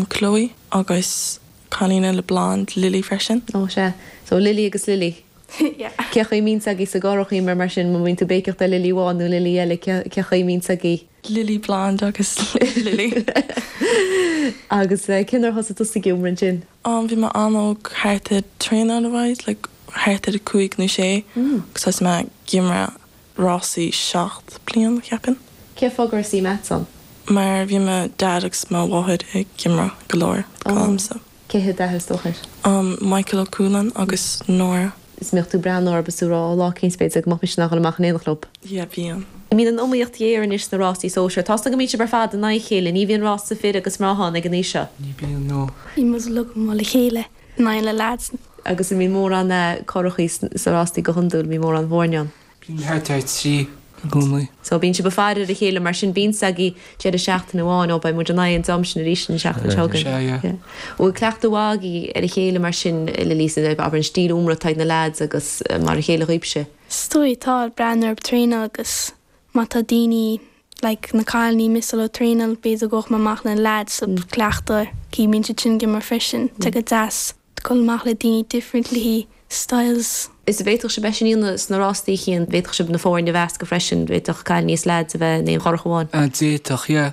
Chloe agus cailín eile blond, Lily freisin. Ó, sea. So, Lily agus Lily. Cén chaoi a mbíonn a fhios agaibh sa gcurach, a Eimear, mar sin. Má bhíonn tú ag béiceach ar Lily amháin nó Lily eile, cén chaoi a mbíonn a fhios agaibh? Lily blond agus Lily. Agus cén uair a thosaigh tusa ag iomramh ansin? Bhí mé an-óg, thart ar traenáil a bhith, like, thart ar a cúig nó sé, agus thosaigh mé ag iomramh. rásaí seacht bliain, cheapfainn. Cén fáth gur suí Matt san? Mar bhí mo Dad agus mo Mháthair ag iomramh go leor romhamsa. Cén t-ainm atá orthu? Á, Michael Ó Cualáin agus Nora. Is mbíodh tú ag breathnú orthub is ag rá lá éicint b'fhéidir go mbeadh mise in ann dhul amach in éineacht leob. Yeah, bíonn. An mbíonn an iomaíocht géar anois sna rásaí sóisir. Tá's agam go mbíonn sibh ar fad in aghaidh a chéile, ní bhíonn rása fir agus mná ann ag an aois seo. Ní bhíonn, no. Bíonn muid uilig i mbun a chéile. In aghaidh na lads. Agus an mbíonn mórán curachaí sna rástaí go hiondúil, an mbíonn mórán foirne ann? Bíonn thart ar trí i gcónaí. So bíonn sibh ag faire ar a chéile mar sin, bíonn s'agaibh deireadh seachtaine amháin, ó beidh muid in aghaidh an dream sin arís an seachtain seo chugainn. Sea, yeah. Bhfuil cleachtadh mhaith agaibh ar a chéile mar sin, le Lisa, abair an stíl iomramh atá ag na lads agus mar a chéile dhaoibhse? Is dóigh, tá, ag breathnú ar dhaoine agus Má tá daoine, like, na cailíní ag missáil ó thraenáil, b'fhéidir go ngabhfadh mé amach leis na leaids sa gcleachtadh, gidh, bíonn siad sin ag iomramh freisin. Tá sé go deas, dul amach le daoine differently styles. Is an bhféadfadh sibh é sin a dhéanamh sna rástaí, a Chian, bhféadfadh sibh na foirne a mheascadh freisin, bhféadfadh cailíní is leaids a bheith in aon churach amháin. Á, d'fhéadfadh, yeah,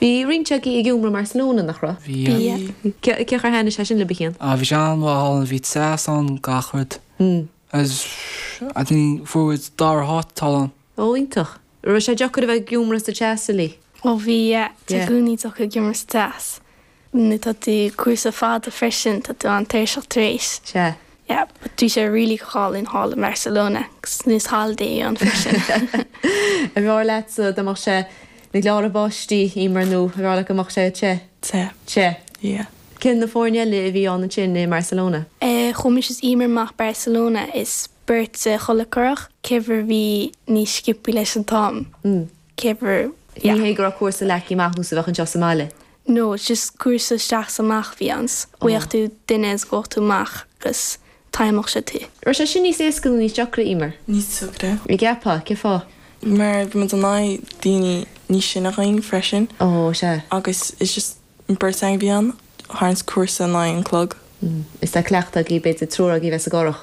Bhí roinnt agaibh ag iomramh i mBarcelona, nach raibh? Bhí. Cén chaoi ar thaitnigh sé sin libh, a Chian? Á, bhí sé an-mhaith ann, bhí teas ann, gach rud. Agus fuair muid dara háit thall ann. Ó, iontach. Raibh sé deacair a bheith ag iomramh sa teas uilig? Ó bhí, yeah. Tá sé i gcónaí deacair ag iomramh sa teas. Nuair atá tú cúrsa fada freisin, tá tú an-tuirseach tar éis. Sea. Yeah, but bhí sé really go hálainn thall i mBarcelona agus nice holiday ann freisin. Arbh fhearr leatsa dá mbeadh sé ag gleáradh báistí, Eimear, nó arbh fhearr leat go mbeadh sé te? Te. Te. Yeah. Cé na foirne eile a bhí ann ansin i mBarcelona? Eh, chuaigh mise is Eimear amach Barcelona is beirt sa chuile churach, kever bhí níos sciopthaí leis an t-am, kever, yeah. Ní hé go raibh cúrsa leagthaí amach nós a bheadh anseo sa mbaile. No, just cúrsa isteach is amach a bhí ann, 's gheobhadh tú duine is ghabhfadh tú amach agus timeálfadh sé tú. Raibh sé sin níos éasca nó níos deacra, Eimear? Níos deacra. An gceapfá, cén fáth? Mar bhí muid in aghaidh daoine níos sine dhínn freisin. Ó, sea. Agus it's just beirt againn a bhí ann, ag tarraingt cúrsa in aghaidh an chloig. Is tá cleachtadh agaibh, b'fhéidir, triúr agaibh a bheith sa gcurach.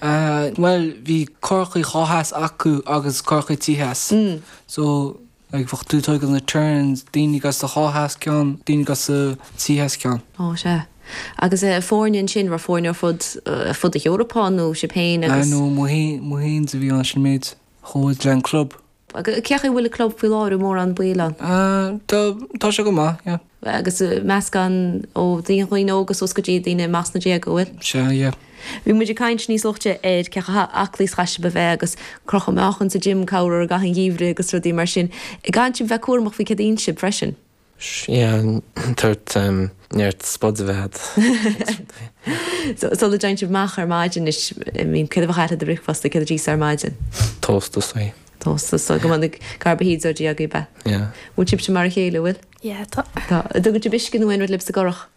Bhuel, bhí curachaí dhá sheas acu agus curachaí trí sheas. So, like, bheadh tú ag tógáil na turns, daoine as do dhá sheas ceann, daoine as do trí sheas ceann. Ó, sea. Agus na foirne ansin, raibh foirne ar fud, ar fud na hEorpa nó sibh féin agus. No, muid fhéin a bhí ann, sin an méid. Chuaigh muid leis an club. Agus cén chaoi a bhfuil an club faoi láthair, mórán baill ann? Tá sé go maith, yeah. Agus meascán ó dhaoine, dhaoine óga suas go dtí daoine amach sna déaga, an bhfuil? Sea, yeah. Bhí muid ag caint níos luaithe ar cé chomh aclaí is chaithfeadh sibh a bheith agus crochadh meáchan sa gym, go mór mhór i gcaitheamh an gheimhridh agus rudaí mar sin. An gcaitheann sibh a bheith cúramach faoi céard a itheann sibh freisin. Sea, tabhairt neart spud a bheith agat. Sula dtéann sibh amach ar maidin anois, I mean, céard a bheadh agat do bhricfeasta, céard a d'íosfá ar maidin? Tóst is dóigh. Tóst is dóigh. Go mbeadh carbohydrates agaibh, a? Yeah. Bhfuil sibhse mar a chéile, bhfuil? Yeah, tá. Tá. An dtugann sibh uisce nó aon rud libh sa gcurach?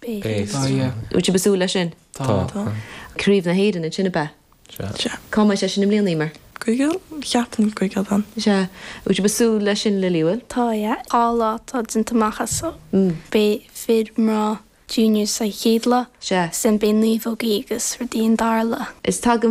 Beidh. Bhfuil sibh ag súil leis sin? Tá. Craobh na hÉireann ansin, ab ea? Sea. Cá mbeidh sé sin i mbliana, Emer? Guigil? Cheapaim go Guigil bean. Sea. Bhfuil sibh ag súil leis sin, Lily? Bhfuil? Tá, yeah. Dhá lá atá déanta amach as seo. Beidh fir mná junior sa chéad lá. Sea. Sin beidh naomhógaí agus rudaí an dara lá. Is tagaim.